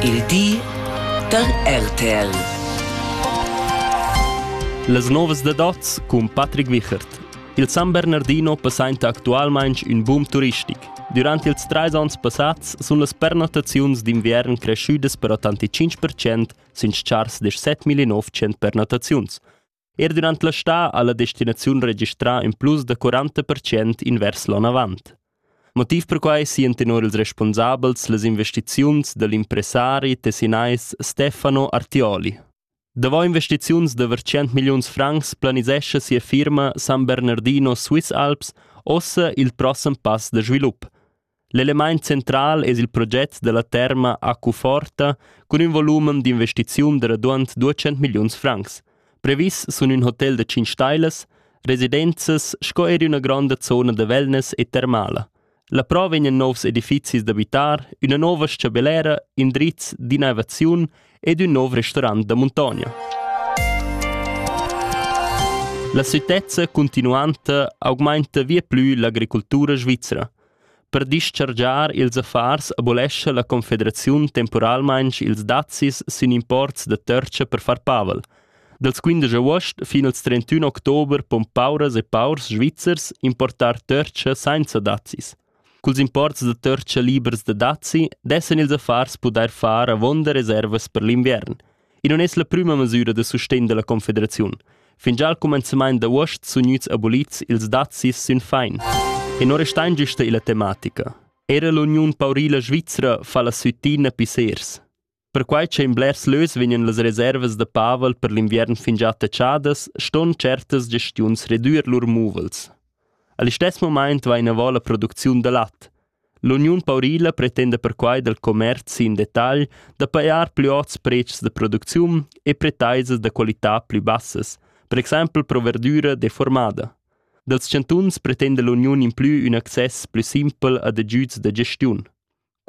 il di da RTL. Las novas da dots cun Patrick Wichert. Il San Bernardino passainta actualmaing ün boom turistic. Durant ils trais ans passats sun las pernottaziuns d'inviern creschüdas per 85% sün chars da 7.900 pernottaziuns. Er durant la stà ha la destinaziun registrà in plus da 40 percent invers l'onn avant. Motiv per quai sien tenor ils responsabels las investiziuns dal impressari tessinais Stefano Artioli. Davò investiziuns da 100 milliuns francs planisescha sia firma San Bernardino Swiss Alps ossa il prossem pass da svilup – L'elemaint central es il proget da la terma Accuforta cun ün volumen d'investiziun da raduond 200 milliuns francs. Previs sun ün hotel da 5 stailas, residenzas sco eir üna gronda zona da wellness e termala. La prova vegnan nouvs edifizis d'abitar, üna nouva s-chabellera, indrizs d'innovaziun ed ün nouv restorant da muntogna. La sütezza continuanta augmainta via plü l'agricultura svizzera. Per dischargiar ils affars abolescha la Confederaziun temporalmaing ils dazis sün imports da törcha per far pavel. Dals 15 agost fin al 31 october pon pauras e paurs svizzers importar törcha sainza dazis. Culs imports da törcha libers da dazi dessan ils affars pudair far avonda reservas per l'inviern. I non es la prüma masüra da sustegn da la Confederaziun. Fingià al cumenzamaint d'avuost sun gnüts abolits ils dazis sün fain. E non restain güsta illa tematica. Era l'Uniun Paurila Svizra fa la süttina pissers. Perquai ch'ein blers leus vegnan las reservas da pavel per l'inviern fingià taxadas, ston certas gestiuns redüer lur muvels. A listess momaint va inavò la producziun da lat. L'Uniun Paurila pretenda perquai dal commerzi in detagl da pajar plü ots prezs da producziun e pretaisas da qualità plü bassas, per exaimpel pro verdüra deformada. Dals chantuns pretenda l'uniun implü ün access plü simpel ad agüds da gestiun.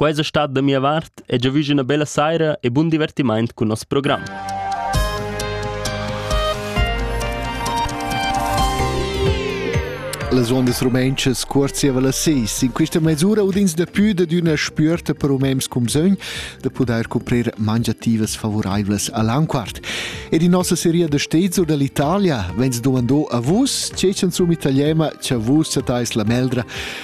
Quai es stat da mia vart e giavüsch üna bella saira e bun divertimaint cun nos program. Las ondas rumentschas cuorzieva las seis. In questa mesura udins dapü dad üna spüerta per umens cum sogn da pudair cuprir mangiativas favuraivlas a Lanquart. Ed in nossa seria da stezur dall'Italia vegns dumandò a vus, ce sun sum italiema, cha vus satais la meldra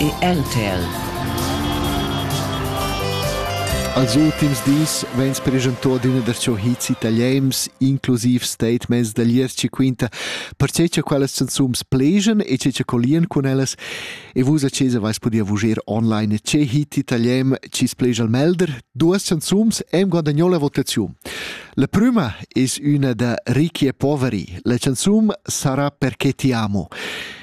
e NTL. Als ultims dis vegns preschentà adüna darcho hits italiens, inclusiv statements da gliez chi quinta perche cha quellas canzuns plejan e che cha collian cun ellas e vus a chesa vais podia vuger online che hit italien chi splegia al melder, duas canzuns em guadagnò la votaziun. La prima es üna da Ricchi e poveri. La canzun sarà Perché ti amo.